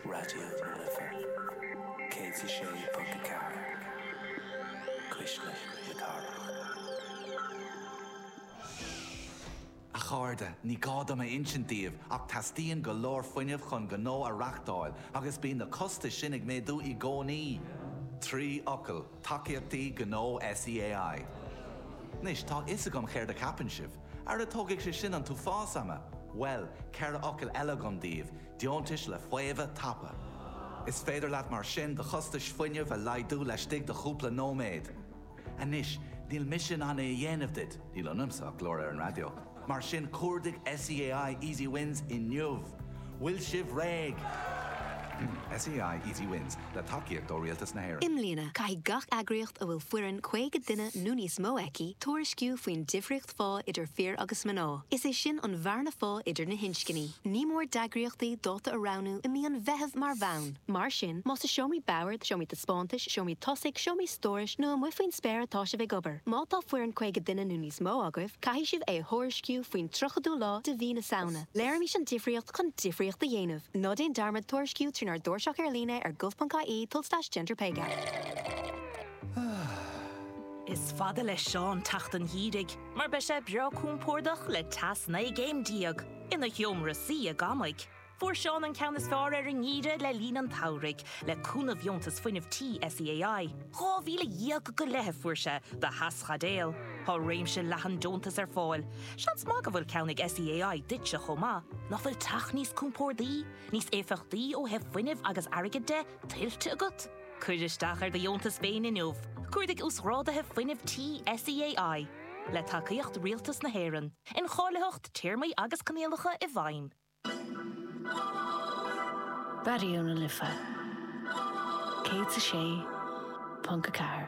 Raidió na Life 106.4 Cuisle na Cathrach. A chairde, ní gá dom a insint daoibh ach teastaíonn go leor fuinnimh chun gnó a reachtáil agus bíonn na costais sin ag méadú i gcónaí! Trí fhocal: Tacaíochtaí Gnó SEAI. Anois, tá a fhios agam chéard a cheapann sibh. Ara tógfaidh sé sin an t-uafás ama! Bhuel, ceithre focal eile agam daoibh, deontais le faomhadh tapa. Is féidir leat mar sin do chostais fuinnimh a laghdú laistigh de chúpla nóiméad. Anois, níl mise in ann é a dhéanamh duit, níl ionamsa ach glór ar an raidió, mar sin cuardaigh SEAI Easy Wins inniu! Bhfuil sibh réidh? SEAI Easy Wins, le tacaíocht ó Rialtas na hÉireann. I mbliana, caithfidh gach eagraíocht a bhfuil foireann 50 duine nó níos mó aici tuairisciú faoin difríocht phá idir fir agus mná, is é sin an bhearna phá idir na hinscní. Ní mór d'eagraíochtaí dáta a roghnú i mí an Mheithimh mar bhonn. Mar sin, más i seomraí boird, seomraí taispeántais, seomraí tosaigh, seomraí stórais nó amuigh faoin spéir atá sibh ag obair, má tá foireann 50 duine nó níos mó agaibh, caithfidh sibh é a thuairisciú faoin 30ú lá de mhí na Samhna. Léirímis an difríocht chun difríocht a dhéanamh! Ná déan dearmad tuairisciú trínár dtairseach ar líne ar gov.ie tulslais gender pay gap. Is fada le Seán teacht an gheimhridh mar beidh sé breá compordach le teas 19 gcéim ina sheomra suí i gcónaí. Fuair Seán an ceann is fearr ar an ngeimhreadh le linn an tsamhraidh le cúnamh Dheontas Fuinnimh Tí SEAI. Dhá mhíle dhéag go leith a fuair sé do theaschaidéal. Tá réimse leathan deontas ar fáil. Seans maith go bhfuil ceann ag SEAI duitse chomh maith, nach bhfuil teach níos compordaí, níos éifeachtaí ó thaobh fuinnimh agus airgid de, tuillte agat? Cuir isteach ar do dheontas féin inniu, cuardaigh Uasghráduithe Fuinnimh Tí SEAI, le tacaíocht Rialtas na hÉireann, incháilitheacht, téarmaí agus coinníollacha i bhfeidhm. Raidió na Life 106.4.